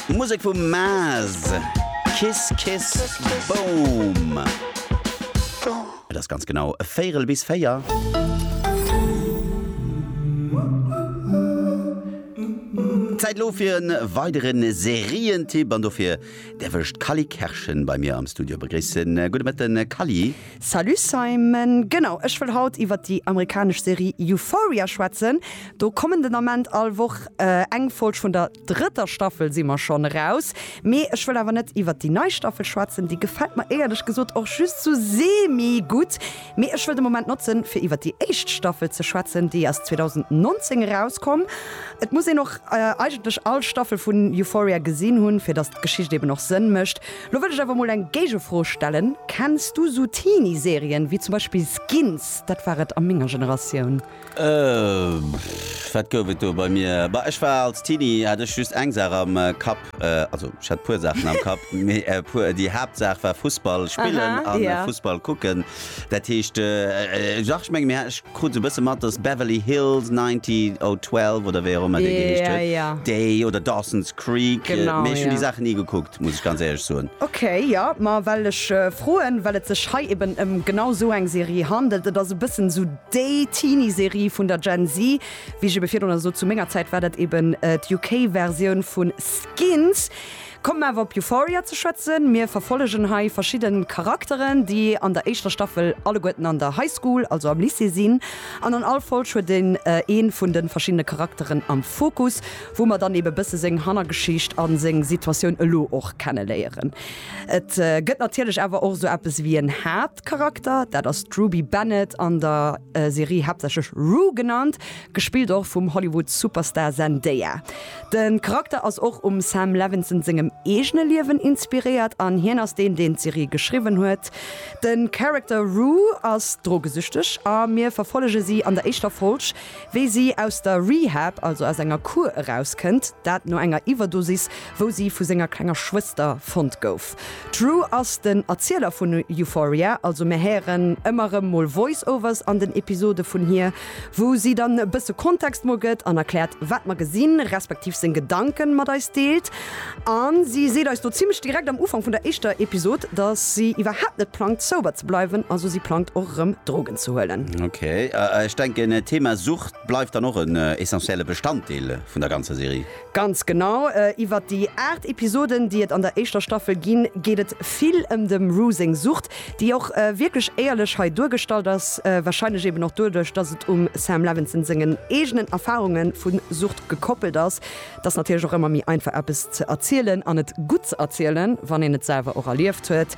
Musek vum Maes, Kiss Kiss Boom. Et ass ganz genau e Véierel bis véier. Zäit elo fir e weidere Serientipp an dofir däerf ech d'Cally Kerschen bei mir am Studio begréissen. Gudde Mëtten Cally. Salut Simon, genau ech wëll haut iwwert déi amerikanesch Serie Euphoria schwätzen. Do kommen den Ament all Woch eng Folg, vun der drëtter Staffel si mer schonn eraus. Mee ech wëll awer net iwwert déi nei Staffel schwätzen, déi gefält mer éierlech gesot och just sou semi gutt. Mee ech wëll de Moment notzen fir iwwert déi éischt Staffel ze schwätzen, déi ass 2019 erauskomm. Et muss een och eigentlech all Staffel vun Euphoria gesinn hunn, fir datt d'Geschicht eben och Sënn mécht. Lo wëll ech awer mol eng Géigefro stellen, Kenns du sou Teenie-Serien wéi zum Beispill Skins? Dat war et a menger Generatioun. Pff, wat gouf et do bei mir? Bah, ech war als Teenie, hat ech just eng Saach am Kapp, also ech hat e puer Saachen am Kapp, mee e puer, déi Haaptsaach war Fussball spillen a Fussball kucken. Dat heescht, dach, ech menge mir, ech krut sou e bësse mat, dass Beverly Hills 90212 oder wéi och ëmmer dee geheescht huet, déi, oder Dawson's Creek, mee ech hunn déi Saachen ni gekuckt. muss ech ganz éierlech soen. Ok, jo, ma well ech froen, well et sech hei eben ëm genau esou eng Serie handelt. Et ass e bëssen esou déi Teenie-Serie vun der Gen Z, wéi ech ebe virdrun sot. Zu menger Zäit war dat eben d'UK-Versioun vu Skins. Kommen mer awer op Euphoria ze schwätzen. Mir verfollegen hei verschidde Charakteren, déi an der éischter Staffel alleguerten an der High School, also am Lycée sinn. An an all Folg huet een ee vun de verschiddene Charakteren am Fokus. wou mer dann ebe bësse seng Hannergeschicht a seng Situatioun elo och kenneléieren. Et gëtt natierlech awer och esou eppes ewéi en Haaptcharakter, dat ass d'Ruby Bennett, an der Serie haaptsächlech Rue genannt, gespillt och vum Hollywood-Superstar Zendaya. De Charakter ass och um Sam Levinson sengem eegene Liewen inspiréiert an hien ass deen, deen d'Serie geschriwwen huet. De Character Rue ass drogesüchteg a mir verfollege si an der éischter Folg, Wéi si aus der Rehab, also aus enger Kur, erauskënnt, dat no enger Iwwerdosis, wou si vu senger klenger Schwëster fonnt gouf. D'Rue ass den Erzieler vun Euphoria, also mir héieren ëmmer erëm mol Voice-Overs an den Episode vun hir, wou si dann e bësse Kontext mol gëtt an erkläert, wat mer gesinn, respektiv seng Gedanken mat eis deelt. A si seet eis do zimmlech direkt am Ufank vun der éischter Episod, dass si iwwerhaapt net plangt sober ze bleiwen, also si plangt och erëm Drogen ze huelen. Ok, ech denken d'Thema Sucht bleift dann och en essentielle Bestanddeel vun der ganzer Serie. Ganz genau, iwwert déi 8 Episoden déi et an der éischter Staffel ginn, geet et vill ëm dem Rue seng Sucht, déi och wierklech éierlech hei duergestallt ass, wahrscheinlech eben och doduerch, dass et um Sam Levinson sengen eegenen Erfarunge vu Sucht gekoppelt ass. Et ass natierlech och ëmmer méi einfach eppes ze erzielen an et gutt ze erzielen, wann een et selwer och erlieft huet.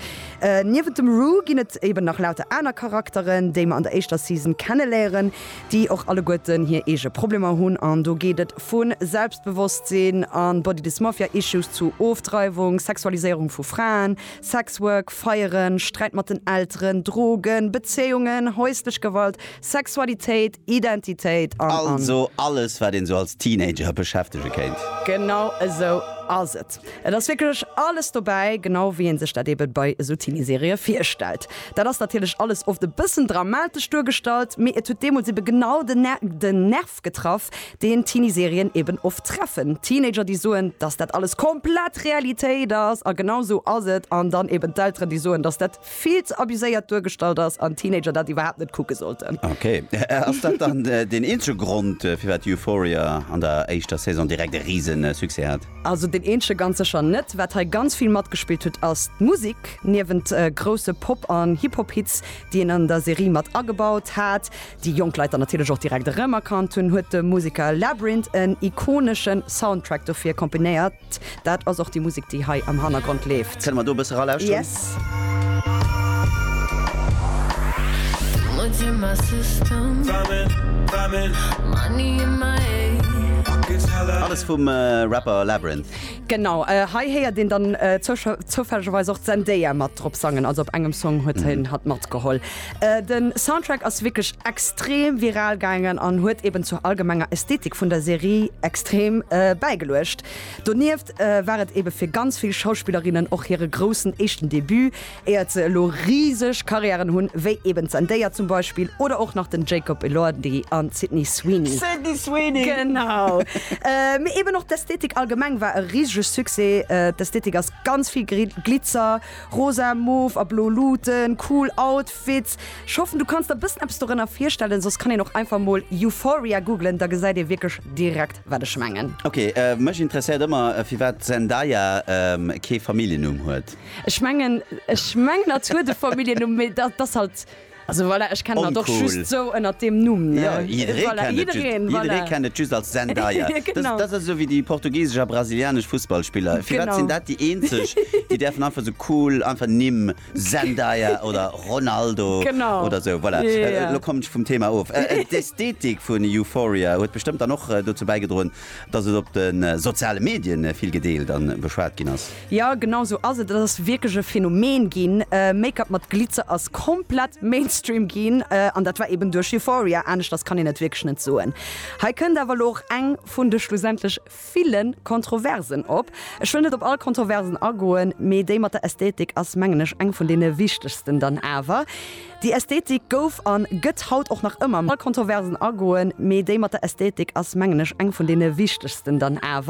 Niewent dem Rue ginn et eben nach lauter aner Charakteren, déi mer an der éischter Season kenneléieren, déi och alleguerten hir eege Problemer hunn an do geet et vu Selbstbewosstsinn a Body Dysmorphia Issues zu Ofdreiwung, Sexualiséierung vu Fraen, Sex Work, Feieren, Sträit mat den Elteren, Drogen, Bezéiungen, häuslech Gewalt, Sexualitéit, Identitéit an. Also alles, wat een sou als Teenager beschäftege kéint. Genau esou ass et. Et ass wierklech alles dobäi, genau wéi ee sech dat eeben bei esou Teenie-Serië virstellt. Dat ass natierlech alles oft e bëssen dramatesch duergestallt, mee et huet deemools eeben genau den den Nerv getraff, deen Teenie-Serien eeben oft treffen. Teenager, déi soen, dass dat alles komplett Realitéit ass a genau esou ass et, an dann eeben d'Elteren, déi soen, dass dat. vill ze abuséiert duergestallt ass an Teenager dat iwwerhaapt net kucke sollten. Ok, ass dat dann deen eenzege Grond firwat Euphoria an der éischter Saison direkt e riesen Succès hat? Also deen eenzege ganz sécher net. Wat hei ganz vill matgespillt huet ass d'Musek. Niewent grousse Pop an Hip-Hop Hits déi een an der Serie mat agebaut hat, déi jonk Leit dann natierlech och direkt erëm erkannt hunn, huet de Museker Labrinth en ikoneschen Soundtrack dofir komponéiert. Dat ass och déi Musek, déi hei am Hannergrond leeft. Kënne mer do e bësse ralauschteren? Yes. Alles vum Rapper Labrinth. Genau, hei héiert een dann zouschau, zoufällegerweis och d'Zendaya mat drop sangen, also op engem Song huet hien hatt matgeholl. Den Soundtrack ass wierklech extrem viral gaangen an huet eben zur allgemenger Ästhetik vun der Serie extrem bäigeluecht. Donieft war et eben fir ganz vill Schauspillerinnen och hire groussen éischten Debut, éiert se elo riseg Karriären hunn, wéi eben d'Zendaya zum Beispill oder och nach den Jacob Elordi an d'Sydney Sweeney. Sydney Sweeney! Genau! Mee eben och d'Ästhetik allgemeng war e risege Succès. D'Ästhetik ass ganz vill Glitzer. Rosa, Mauve a Blo Luuten, cool Outfits. Ech hoffen du kanns der bëssen eppes dorënner virstellen, soss kann een och einfach mol Euphoria googlen, da gesäit ee wierklech direkt wat ech mengen. Ok, mech interesséiert ëmmer firwat d'Zendaya kee Familljennumm huet. Ech mengen, ech mengen hatt huet e Familljennumm, mee datt ass halt. Also voilà, ech kennen der och just sou ënnert deem Numm. Jo, jidderee kennt et just, jidderee kennt et just als Zendaya. Genau. Dat ass esou wéi déi portugisesch a brasilianesch Fussballspiller. Firwat sinn dat déi eenzeg, déi däerfen einfach sou cool einfach Nimm, Zendaya oder Ronaldo oder sou. Voilà, elo kommen ech vum Thema of. D'Ästhetik vun Euphoria huet bestëmmt dann och dozou bäigedroen, Dass et op de soziale Medien vill gedeelt an beschwat ginn ass. Jo genau sou ass et, et ass wierklech e Phänomen ginn. Make-up mat Glitzer ass komplett Mainstream ginn an dat war eben duerch Euphoria, aneschters kann een et wierklech net soen. Hei kënnt awer elo och eng vun de schlussendlech villen Kontroversen op. Ech wëll net op all Kontroversen agoen, mee déi mat der Ästhetik ass mengen ech eng vun deene wichtegsten dann awer. Déi Ästhetik gouf an gëtt haut och nach ëmmer mat Kontroversen agoen, mee déi mat der Ästhetik ass mengen ech eng vun deene wichtegsten dann awer.